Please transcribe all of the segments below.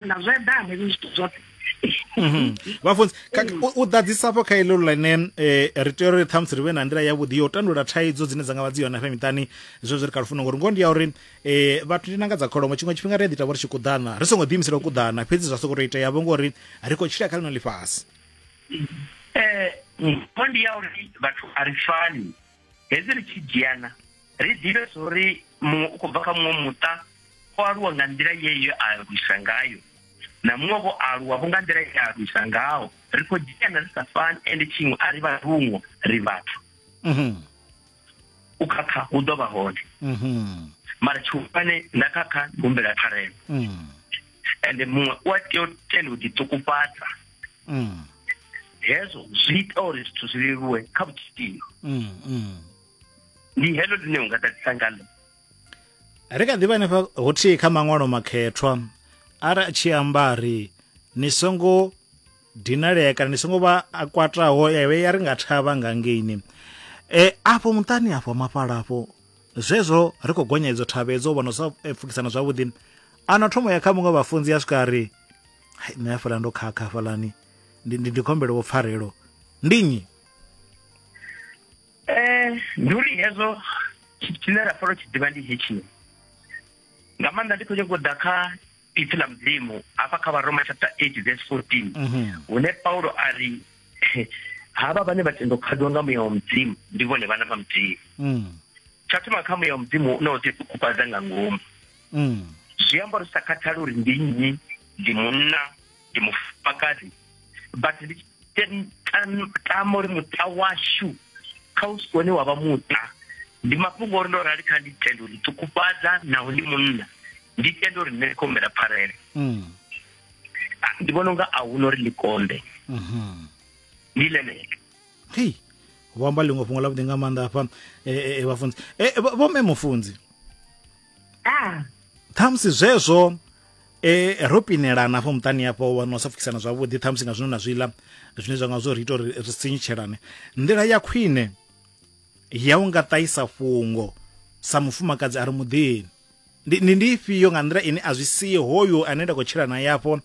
na zwo eḓana hezwi zwithu zwoṱhe mhm. vhafunzi u ḓadzisafho kha iḽo ḽine um ri tea uri ṱhamusi ri vhe na nḓila yavhuḓi ya u tandulula thaidzo dzine dza nga vha dzi yone hafha miṱani zwezwi ri kha lufuno ngori ngoho ndi ya uri um vhathu ndi nanga dza kholomo tshiṅwe tshifhinga ri a ḓi tavha ri tshi kuḓana ri songo ḓiimisela u kuḓana fhedzi zwa soko tou itea vho ngori ri khou tshila kha ḽino ḽifhasi um ndi ya uri vhathu a ri fani hedzi ri tshi dzhiana ri ḓivhe zwo ri muṅwe u khou bva kha muṅwe muṱa o aluwa nga nḓila yeyo a lwisa ngayo na muṅwe vho aluwa vho nga nḓila ye a lwisa ngaho ri khou dzhiana ri sa fani ende tshiṅwe a ri vha rungo ri vhathu mhm. u khakha hu ḓo vha hone mhm. mara tshihulwane nda khakha ndi humbela pfarelo mhm. ende muṅwe u a tea u tenda u ḓiṱukufhadza mm. hezwo zwi ita uri zwithu zwi leluwe kha vhutshilo mm, mm. ndi heḽo ḽine u nga ḓadzisa ngalo ri kha ḓivha hanefha hothihi kha maṅwalo makhethwa ara a tshi amba ri ni songo dinalea kana ni songo vha a kwataho yawe ya ri nga thavha nga ngeini e afho muṱani afho mafhala afho zwezwo ri khou gonya idzo thavha edzo vhona sa e, pfukisana zwavhuḓi ano thomo ya kha muṅwe vhafunzi ya swika ri hai nṋe hafhaḽa ndo khakha hafhaḽani ndi, ndi, ndi khombelo vho pfarelo ndi nnyi eh ndi uri hezwo tshine ra fara tshi ḓivha ndi hetshi nga maanḓa ndi khou nyanga u ḓa kha ipfi ḽa mudzimu hafha kha varoma chapter 8 verse 14 mhm. hune paulo a ri havha vhane vha tendo khadzwa nga muya wa mudzimu ndi vhone vhana vha mudzimu mm. tsha thoma kha muya wa mudzimu u na u ḓifhukufhadza nga ngomu mm. zwi amba uri sa khathali uri ndi nnyi ndi munna ndi mufumakadzi but ndi tama uri muṱa washu kha u sikone wa vha muṱa ndi mafhungo uri ndo rali kha ndi tenda uri ṱukufhadza naho ndi munna ndi tenda uri nṋe khombela pfarele mm. ah, ndi vhona unga a huna uri ḽi konde mm-hmm. ndi ḽenelo vho amba ḽiṅwe fhungo ḽavhuḓi nga maanḓa hafha eh, eh, eh, vhafunzi vho mme mufunzi ah. ṱhamusi zwezwo e ro pinelana afho muṱani afho wana u sa pfukisana zwavhuḓi ṱhamusi nga zwino na zwiḽa zwine zwa nga zwo ri ita uri ri sinyutshelane nḓila ya khwine ya u nga ṱahisa fhungo sa mufumakadzi a ri muḓini ndi ndi ndi ifhio nga nḓila ine a zwi sie hoyo ane nda khou tshila na yafho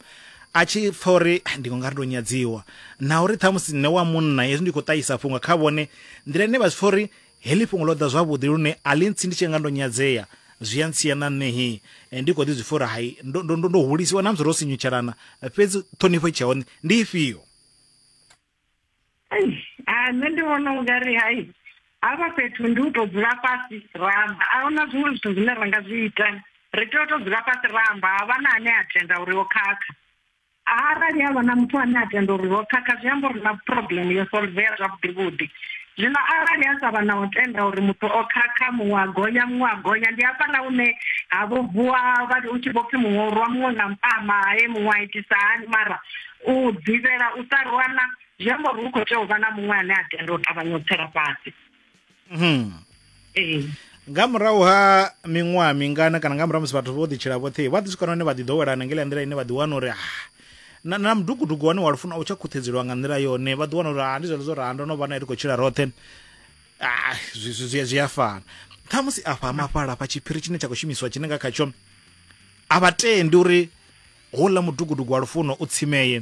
a tshi pfa uri ah, ndi nga ri ndo nyadziwa na uri ṱhamusi nṋe wa munna hezwi ndi khou ṱahisa fhungo kha vhone nḓila ine vha zwi pfa uri Heḽi fhungo ḽo ḓa zwavhuḓi lune a ḽi ntsi ndi tshi nga ndo nyadzea, zwi a ntsia na nṋe hi ndi khou ḓi zwi pfa uri hai ndo, ndo, ndo, ndo hulisiwa na musi ro sinyutshelana, fhedzi ṱhonifho i tshe hone ndi ifhio? Eish, a nṋe ndi vhona ungari hai hafha fhethu ndi u tou dzula fhasi ra amba, a huna zwiṅwe zwithu zwine ra nga zwi ita, ri tea u tou dzula fhasi ra amba, ha vha na ane a tenda uri o khakha. arali havha na muthu ane a tenda uri ro khakha zwi amba uri na problem yo solvea zwavhuḓi vhuḓi zwino arali a sa vha na u tenda uri muthu o khakha muṅwe a gonya muṅwe a gonya ndi hafha na hune ha vho vuwa vha hu tshi vho pfhi muṅwe u rwa muṅwe nga mpama he muṅwe a itisa hani mara u ḓivhela u sa rwana zwi amba uri hu khou tea u vha na muṅwe ane a tenda u ṱavhanya u tsela fhasi Mhm. ee nga murahu ha miṅwaha mingana kana nga murahu musi vhathu vho ḓitshila vhoṱhe vha ḓi swika na hone vha ḓi ḓowelana ngela nḓila ine vha ḓi wana uri ah, na, na mudugudugu wane wa lufuna u tsha khuthedzeliwa nga nḓila yone vha ḓi wana uri ah, ndi zwone zwo raha ndo no vha nae ri khou tshila roṱhe Ah, zwi- zwi zwi- zwi a fana ṱhamusi afha mafhala afha tshiphiri tshine tsha khou shumiswa tshine nga khatsho a vha tendi uri houḽa mudugudugu wa lufuno u tsimeye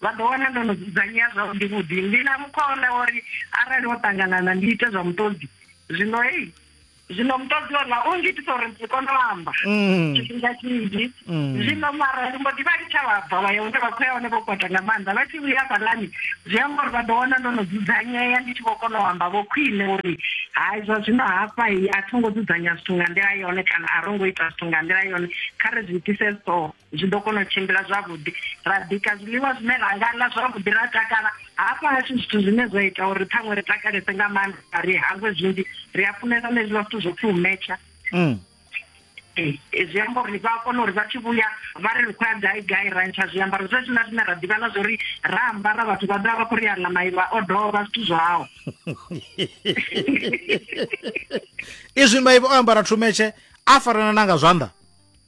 Vha ḓo wana ndo no dzudzanyea zwavhuḓi-vhuḓi. Ndi na mukhwa woḽa wa uri arali ho ṱanganana ndi ite zwa muṱodzi. Zwino hei, zwino muṱodzi woḽa u ngitisa uri ndi si kone u amba tshifhinga tshinzhi. Zwino mara ndi mbo ḓi vha litsha vha bva vha ya hune vha khou ya hone vho kwata nga maanḓa. Vha tshi vhuya hafhaḽani zwi amba uri vha ḓo wana ndo no dzudzanyea ndi tshi vho kona u amba vho khwiṋe uri hai zwa zwino hafha a tho ngo dzudzanya zwithu nga nḓila yone kana a ro ngo ita zwithu nga nḓila yone, kha ri zwi itise so. zwi ḓo kona u tshimbila zwavhuḓi ra bika zwiḽiwa zwine ra nga ḽa zwavhuḓi ra takala hafha hashu zwithu zwine zwa ita uri ṱhaṅwe ri takalese nga maanḓa ri hangwe zwinzhi ri a funesa na hezwiḽa zwithu zwo pfhi u metsha mm. eh, eh, zwi amba uri vha kona uri vha tshi vhuya vha ri ri khou ya gai gai ra ntsha zwiambaro zwe zwina zwine ra ḓivha na zwo ri ra ambara vhathu vha ḓa vha khou ri a ḽa maivha o dovha zwithu zwao izwi maivha o ambara thumetshe a farana na nga zwanḓa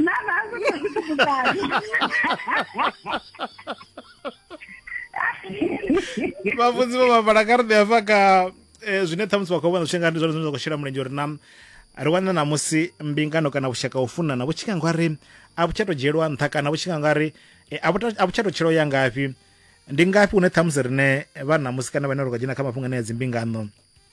Não, não, não tem dificuldade. vhafunzi vho vha vhala kha ri ḓi hafha kha eh, zwine ṱhamusi vha khou vhona zwi tshi nga ndi zwone zwine zwa khou shela mulenzhe uri na ri wana na musi mbingano kana vhushaka u funana vhu tshi nga nga ri a vhu tsha tou dzhielwa nṱha kana vhu tshi nga nga ri eh, a vhu ta- a vhu tsha tou tshilo ya ngafhi ndi ngafhi hune ṱhamusi rine vha na musi kana vhane ri khou dzhena kha mafhungo ane ya dzimbingano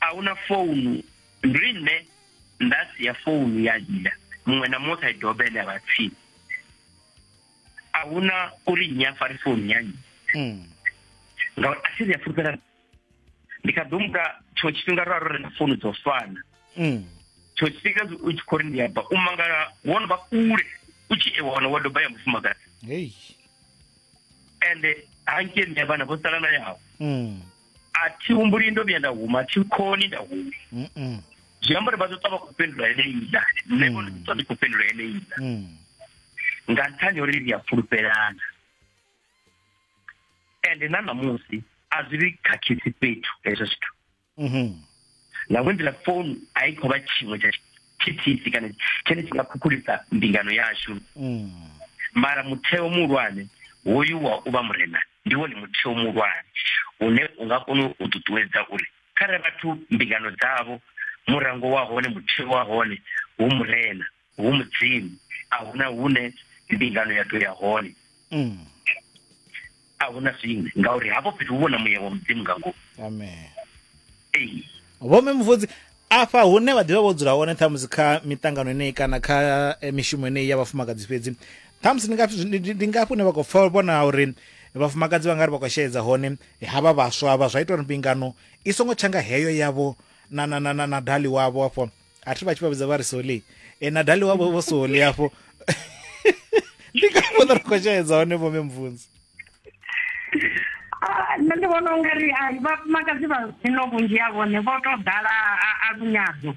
a hu na founu ndi nṋe nda si ya founu ya dzhia muṅwe na muṅwe kha i dobe ene a vha tsini a hu na uri nnyi a fare founu ya nnyi hmm. ngauri a si ri a fulufhela ndi kha ḓo muka tshiṅwe tshifhinga ro a ro renga founu dzo fana hmm. tshiṅwe tshifhinga u tshi khou ri ndi ya ba u mangala wo no vha kule u tshi e wana wa doba ya mufumakadzi ende hanke nṋe vhana vho sala na yawe hmm. a thi humbuli ndo vhuya nda huma thi khoni nda huma mm -mm. zwi amba uri vha ḓo ṱwa vha khou fhindula eneiḽa nṋe vho ḓo ndi khou fhindula eneiḽa mm. nga nṱhani uri ri a fulufhelana ende na ṋamusi a zwi vhi khakhisi fhethu hezwo zwithu mm-hmm. na vho nḓila founu a i khou vha tshiṅwe tsha thithisi kana tshine tshi nga khukhulisa mbingano yashu mm. mara mutheo muhulwane hoyu wa u vha murena ndi wone mutheo muhulwane une u nga kona u ṱuṱuwedza uri khare vhathu mbingano dzavho murango wa hone mutheo wa hone hu murena hu mudzimu a huna hune mbingano ya ḓo ya hone mm. a hu na zwiṅwe ngauri hafho fhethu hu vhona muya wa mudzimu nga ngomu amen ee vhome muvudzi afha hune vha ḓivha vho dzula hone ṱhamusi kha miṱangano eneyi kana kha eh, mishumo eneyi ya vhafumakadzi fhedzi ṱhamusi ndi ngafhi- ndi- ndi- ndi ngafhi hune vha khou pfa vhona uri vhafumakadzi vha nga ri vha khou sheedza hone havha vhaswa vha zwa ita uri mbingano i songo tsha nga heyo yavho na, na, na, na, na dali wavho afho a thi vha tshi vha vhidza vha ri soli e na dali wavho vho soli afho ndi ka vhona ri khou shaedza hone vho memvunzi ah, nṋe ndi vhona ungari ah, vhafumakadzi vha zwino vhunzhi ha vhone vho to ḓala a lunyadzo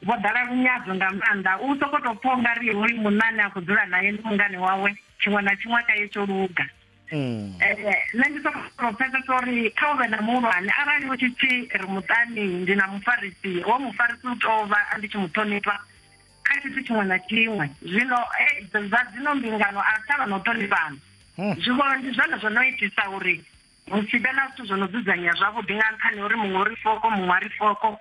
vho ḓala lunyadzo nga maanḓa u soko to pfha ungari hoyu munna ane a khou dzula naye ndi mungane wawe tshiṅwe na tshiṅwe kha ye tsho luga Mm. Eh, nṋe ndi soko kona u pfesesa uri kha u vhe na muhulwane arali hu tshi pfi ri muṱani ndi na mufarisi wo mufarisi u tou vha ndi tshi mu ṱhonifha kha tshithu tshiṅwe na tshiṅwe zwino eh, zwa dzino mbingano a tshavha na u ṱhonifhana hmm. zwivho ndi zwone zwo no itisa uri hu si vhe na zwithu zwo no dzudzanyea zwavhuḓi nga nṱhani uri muṅwe uri foko muṅwe a ri foko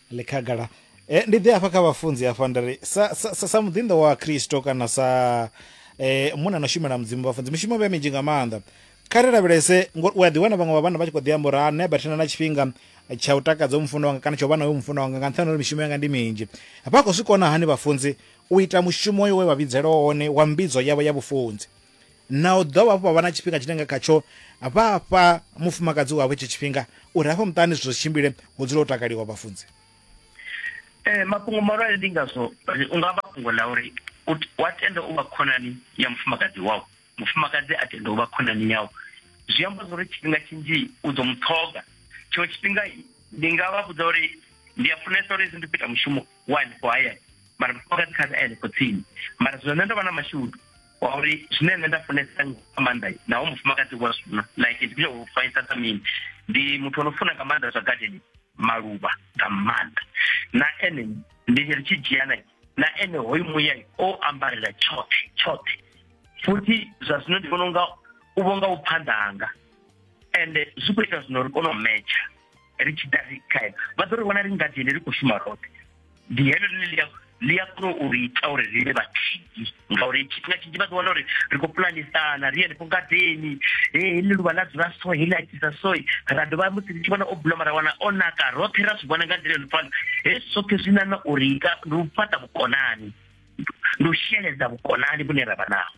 ḽi khagala e, ndi ḓe afha kha vhafunzi afha nda ri sa, sa, sa, sa muḓinḓa wa kristo kana sa e, munna no shumela mudzimu vhafunzi mishumo vhe minzhi nga maanḓa kha ri lavhelese ngori u a ḓiwana vhaṅwe vha vhanna vha tshi khou ḓi amba uri ha nṋe bathena na tshifhinga tsha u takadza u mufuno wanga kana tsha u vha na uyo mufuno wanga nga nṱhani uri mishumo yanga ndi minzhi vha khou zwi kona hani vhafunzi u ita mushumo yo we vha vhidzelwa wone wa mbidzo yavho ya vhufunzi na u dovha hafhu vha vha na tshifhinga tshine nga khatsho vha fha mufumakadzi wavho itsho tshifhinga uri hafha muṱani zwithu zwi tshimbile hu dzule ho takaliwa vhafunzi um mafhungo mahulwane ndi ngazwo u nga vha fhungo ḽa uri wa tenda u vha khonani ya mufumakadzi wau mufumakadzi a tenda u vha khonani yau zwi amba zwa uri tshifhinga tshinzhi u ḓo mu ṱhoga tshiṅwe tshifhinga ndi nga vha vhudza uri ndi a funesa uri hezwi ndi fhita mushumo wa hanefho hayani mara mufumakadzi kha a hanefho tsini mara zwino nṋe ndo vha na mashudu wa uri zwine nṋe nda funesa nga maanḓa naho mufumakadzi wa zwifuna like ndi u faisa sa mini ndi muthu ono funa nga maanḓa zwa gadeni maluvha nga maanḓa na ene ndi ri tshi dzhiana na ene hoyu muya o ambarela tshoṱhe tshoṱhe futhi zwa zwino ndi vhona unga u vhonga u phanḓa hanga ende zwi khou ita zwino ri kone u metsha ri tshi ḓa ri khae vha ḓo ri vhona ri ngadi ene ri khou shuma roṱhe ndi heḽo ḽine ḽi ḽi a kona u ri ita uri ri vhe vhathihi ngauri tshifhinga tshinzhi vha ḓi wana uri ri khou pulanisana ri henefho ngadeni e heḽi luvha ḽa dzula so heḽi a tshisa so ra dovha musi ri tshi vhona o buloma ra wana o naka roṱhe ra zwi vhona nga nḓila yo no fana hezwi zwoṱhe zwi nana uri ndi u fhaṱa vhukonani ndi u sheledza vhukonani vhune ra vha naho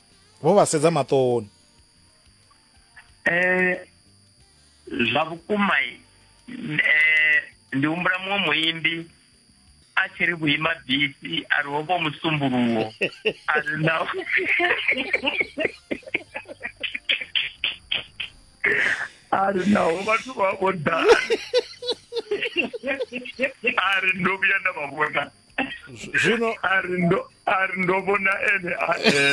vho vha sedza maṱoni eh zwa vhukuma eh ndi humbula muṅwe muimbi a tshi ri vhuima bisi a ri hovho musumbuluwo a ri na a ri naho vhathu vha vho ḓa a ri ndo vhuya nda vha vhona zwino ari ndo ari ndo vhona ene a eṱhe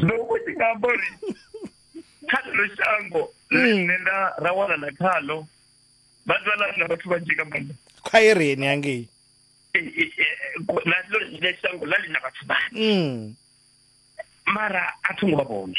ndo vho ndi nga amba uri kha ḽeḽo shango ḽine nda ra wanana khaḽo vha ḓivha ḽa na vhathu vhanzhi nga maanḓa khwaireni hangei ḽaḽo ḽine shango ḽa ḽi na vhathu vhanzhi mara a tho ngo vha vhone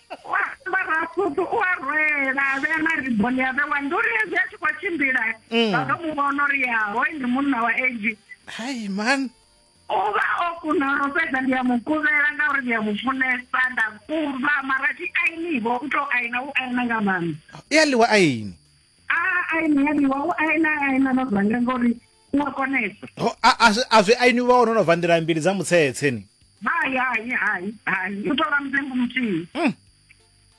u a ambara sutu u a rwela a vhea na riboni a vhewa ndi uri hezwi a tshi khou tshimbila Mm. vha ḓo mu vhona uri ya hoyu ndi munna wa age hai man u vha o kuna lwo fhedza ndi a mu kuvhela ngauri ndi a mu funesa nda kuva mara thi ainivo u tou aina u aina nga maanḓa i a ḽiwa aini a aini ya ḽiwa u aina aina na zwanga ngori u a konesa Ho, a- a zwi- a zwi aini vha wono no bva nḓila mbili dza mutsetse ni hai hai hai hai u tou vha mutengo muthihi Mm.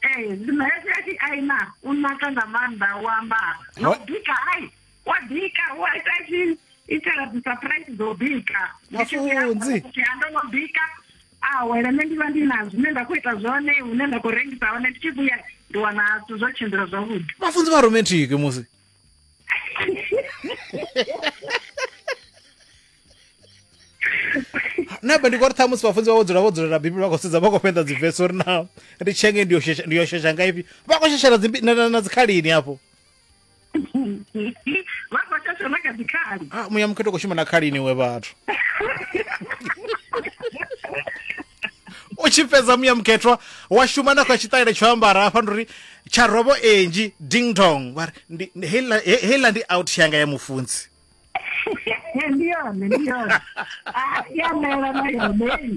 ee zwino hezwi a tshi aina u naka nga maanḓa u ambara na Ho- u bika hai wa bika wa ita tshi itela dzisurprise dzo bika Ndi tshi vhuya Mafunzi. hafha, ndi ando no bika awele nṋe ndi vha ndi na zwine nda khou ita zwone hune nda khou rengisa hone ndi tshi vhuya ndi wana zwithu zwo tshimbila zwavhuḓi vhafunzi vha romantic musi na be ndi kho ri ṱhamusi vhafunzi vha vho dzula vho dzulela bibele vha khou sedza vha khou fhenḓa dzivesi uri na ri tshenge ndi yo shesha- ndi yo shesha nga ifhi vha khou sheshela dzimbi- na- na na dzikhalini hafho vha khou shasha na kha dzikhali Ah, muya mukhetho khou shuma na khalini we vhathu u tshi fhedza muya mukhethwa wa shuma na kha tshiṱaile tsho ambara hafha ndi uri tsha robo enji ding dong vha ri ndi- ndi- heiḽa he- heiḽa ndi out yanga ya mufunzi ndi yone ndi yone Ah, ya mela na yone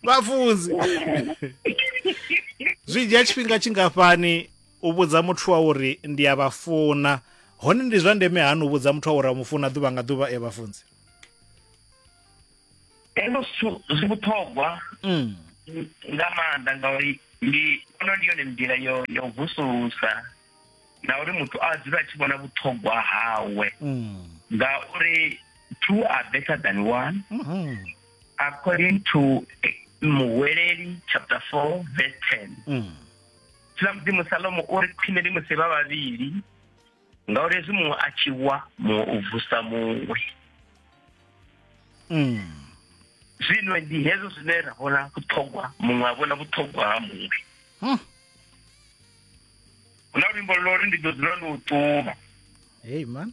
vhafunzi zwi dzhia tshifhinga tshingafhani u vhudza muthu wa uri ndi a vha funa hone ndi zwa ndeme hani u vhudza muthu wa uri a mu funa ḓuvha nga ḓuvha e vhafunzi hezwo zwithu zwi vhuṱhogwa Mm. nga maanḓa ngauri ndi ono ndi yone nḓila yo yo vusulusa na uri muthu a dzule a tshi vhona vhuṱhogwa hawe Mm. ngauri two are better than one Mhm. according to eh, muhweleli chapter 4 verse 10 Mm. tshilamudzimu salomo uri khwine ndi musi vha vhavhili ngauri hezwi muṅwe a tshi wa muṅwe u vusa muṅwe mm. zwino ndi hezwo zwine ra vhona vhuṱhogwa muṅwe a vhona vhuṱhogwa ha muṅwe hm. hu na luimbo lwo ri ndi ḓo dzula ndo ṱuma hey man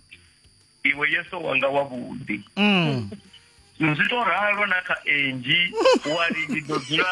iwe yeso wanga wavhuḓi mm. zwi to ralo na kha engi wari ndi ḓo dzula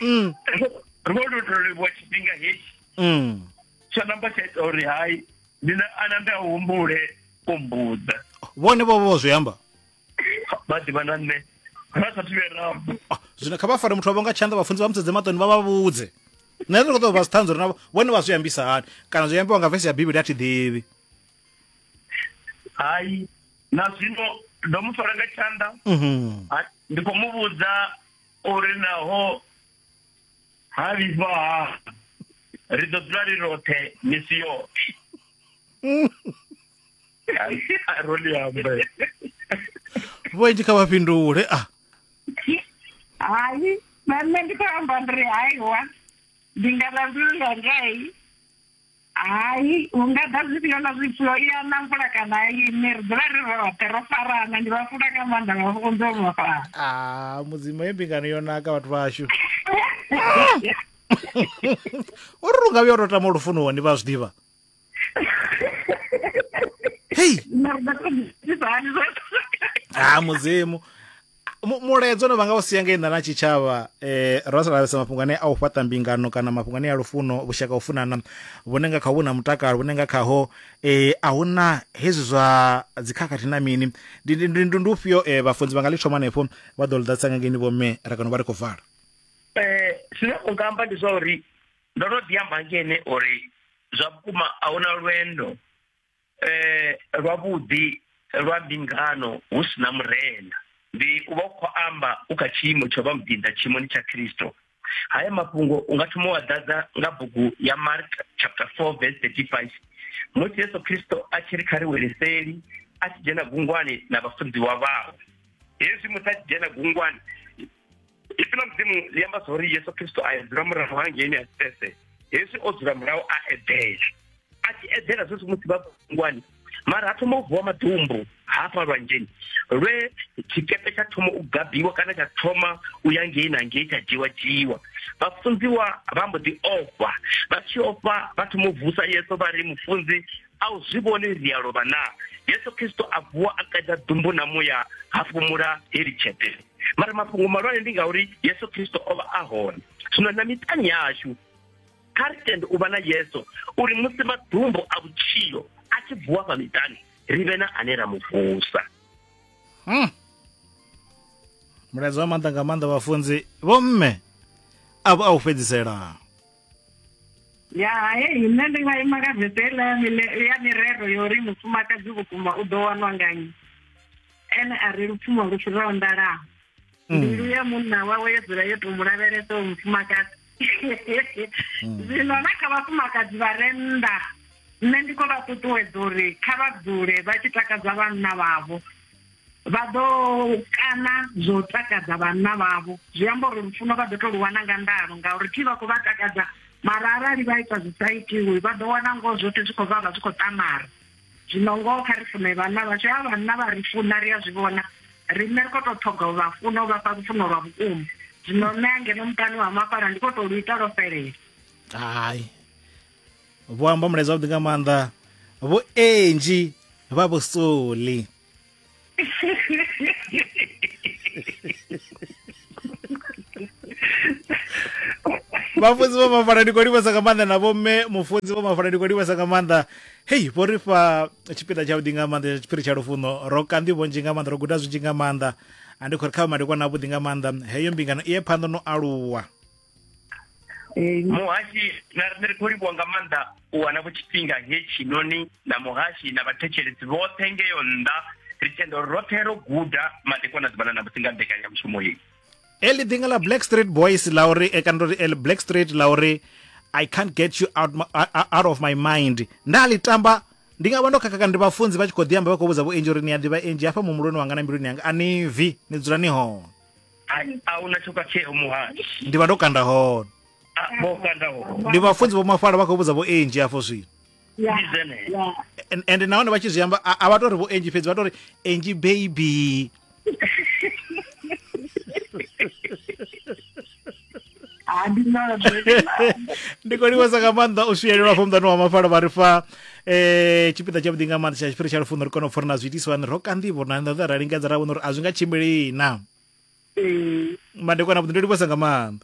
mm. ro lutolivhuwa tshifhinga hetshi mm. tsho namba tsha ita uri hai ndi na ana nda humbule u mbudza vhone vho vho zwi amba vha ḓivha na nṋe ra sa thivhe rambo ah, zwino kha vha fare muthu wavho nga tshanḓa vhafunzi vha musedze maṱoni vha vha vhudze nṋe ndi khou ṱoḓa vha si ṱhanzi uri navho vhone vha zwi ambisa hani kana zwi ambiwa nga vesi ya bivhili a thi ḓivhi hai na zwino ndo mu fara nga tshanḓa mhm. ndi khou mu vhudza uri naho ha vhifha ha ri ḓo dzula ri roṱhe misi yoṱhe roli ambe vhoenji kha vha fhindule a hayi na nṋe ndi khou amba ndi ri haiwa ndi nga vha mbilu yangai hai hu nga ḓa zwifhio na zwifhio i ana mvula kana ini ri dzula ri roṱhe ro farana ndi vha funa nga maanḓa vha funza u vhafana a ah, mudzimu ye mbingano yo naka vhathu vhashu o ri lunga vhuya o tou tama lufuno wani vha zwi ḓivha hei ha ah, mudzimu mulaedza no vhanga u sia nga inḓa na tshitshavha eh ro sa lavhelesa mafhungo ane a u fhaṱa mbingano kana mafhungo ane a lufuno vhushaka u funana vhune nga kha vhu na mutakalo vhune nga khaho eh a hu na hezwi zwa dzikhakhathi na mini ndi ndi ndi ndi ufhio eh vhafunzi vha nga ḽi thoma hanefho vha ḓo ḽi ḓadzisa nga ngeni vho mme ra kana vha ri khou vala eh zwine u nga amba ndi zwa uri ndo no ḓi amba ngene uri zwa vhukuma a hu na lwendo eh, lwavhuḓi lwa mbingano hu si na murena ndi u vha u khou amba u kha tshiimo tsho vha muḓinda tshiimoni tsha khristo haya mafhungo u nga thoma wa ḓadza nga bugu ya mark chapter 4 verse 35 musi yesu khristo a tshi ri kha ri wele seli a tshi dzhena gungwani na vhafunziwa vhawe hezwi musi a tshi dzhena gungwani ipfi ḽa mudzimu ḽi amba zwa uri yesu khristo a edzula murahu hangeini a sipese hezwi o dzula murahu a edela a tshi edela zwezwi musi vha ngwani mara ha thoma u vuwa maḓumbu hafha lwanzheni lwe tshikepe tsha thoma u gabiwa kana tsha thoma u ya ngei na ngei tsha dzhiwa dzhiwa vhafunziwa vha mbo ḓi ofha vha tshi ofha vha thoma u vusa yeso vha ri mufunzi A u zwi vhoni ndi a lovha naa? Yesu Kristo a vuwa a qeda ḓumbu na muya ha fhumula heḽi tshete. Mara mafhungo malwane ndi ngauri Yesu Kristo o vha a hone. Zwino na miṱani yashu kha ri tende u vha na Yesu uri musi maḓumbu a vhutshilo a tshi vuwa fha miṱani ri vhe na ane ra mu vusa. Hmm. Mulaedza wa maanḓa nga maanḓa vhafunzi vho mme avho a u fhedzisela. ya hai nṋe ndi nga ima nga vese ḽa ya mirero yo ri mufumakadzi vhukuma u ḓo wanwa nga nnyi ene a ri lupfumo lu fhiraho ndalaho mm. mbilu ya munna wawe yo dzula yo tou mu lavhelesa u mufumakadzi mm. zwino na kha vhafumakadzi vha re nnḓa nṋe ndi khou vha ṱuṱuwedza uri kha vha dzule vha tshi takadza vhanna vhavho vha ḓo kana zwo takadza vhanna vhavho zwi amba uri lufuno vha ḓo to lu wana nga ndalo ngauri thi vha khou vha takadza mara arali vha ita zwi sa itiwi vha ḓo wana ngoho zwoṱhe zwi khou vha vha zwi khou ṱamara zwino ngoho kha ri fune vhanna vhashu a vhanna vha ri funa ri a zwi vhona riṋe ri khou tou ṱhoga u vha funa u vha fha lufuno lwa vhukuma zwino nṋe angeno muṱani wa mafhala ndi khou tou lu ita lwo fhelela hai vho amba mulaedza wavhuḓi nga maanḓa vho enji vha vhusoli vhafunzi vho mafana ndi khou livhasa nga maanḓa na vhomme mufunzi vho mafana ndi khou livhasa nga maanḓa hei vho ri fha tshipiḓa tshavhuḓi nga maanḓa tsha tshiphiri tsha lufuno ro kanḓi vhonzhi nga maanḓa ro guda zwinzhi nga maanḓa a ndi khou ri kha vha madekwana avhuḓi nga maanḓa heyo mbingano i ye phanḓa no aluwa Eh, muhashi na riṋe ri khou livhuwa nga maanḓa u wana vho tshifhinga hetshinoni na muhashi na vhathetshelesi vhoṱhe ngeyo nnḓa ri tenda uri roṱhe ro guda madekwana ḓuvhana na musi nga mbekanyamushumo yeyi eli ḓinga ḽa black street boys ḽa uri e kana uri eli black street ḽa uri i can't get you out, my, uh, uh, out of my mind nda ḽi tamba ndi nga vha ndo khakha kana ndi vhafunzi vha tshi khou ḓi amba vha khou vhudza vho enji uri ni a ḓivha enji hafha muhumbuloni wanga na mbiluni yanga a ni vi ni dzula ni hone a huna tsho khatsheo muhali ndi vha ndo kanda hone vho kanda hone ndi vhafunzi vho mafhala vha khou vhudza vho enji afho zwino ende nahone vha tshi zwi amba a vha tori vho enji fhedzi vha tori enji baby ha ndi na ndi khou livhesa nga maanḓa u swiyelelwa afho muḓani wa mafalo vha ri fa um tshipiḓa tshavhuḓi nga maanḓa tsha tshifhiri tsha lufuno ri kone u pfha uri na zwiitiswa ni ro kanḓivho na nḓaḓa ra lingedza ra vhona uri a zwi nga tshimbilii na ee madekwana vhuḓi ndo livhesa nga maanḓa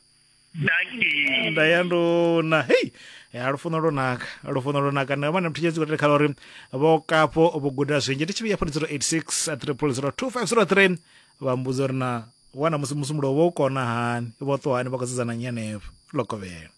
daki nda ya nduna hei ya lufuno lwo naka lufuno lwo naka nda vha na muthu tshedzi kotele khala uri vho kapo vho guda zwinzhi ndi tshivhiya fhoni 086 triple 02503 vha mbudza uri na wana musi musumbulo vho u kona hani vho ṱuwa hani vha khou sedzana nyi henefho lokovhela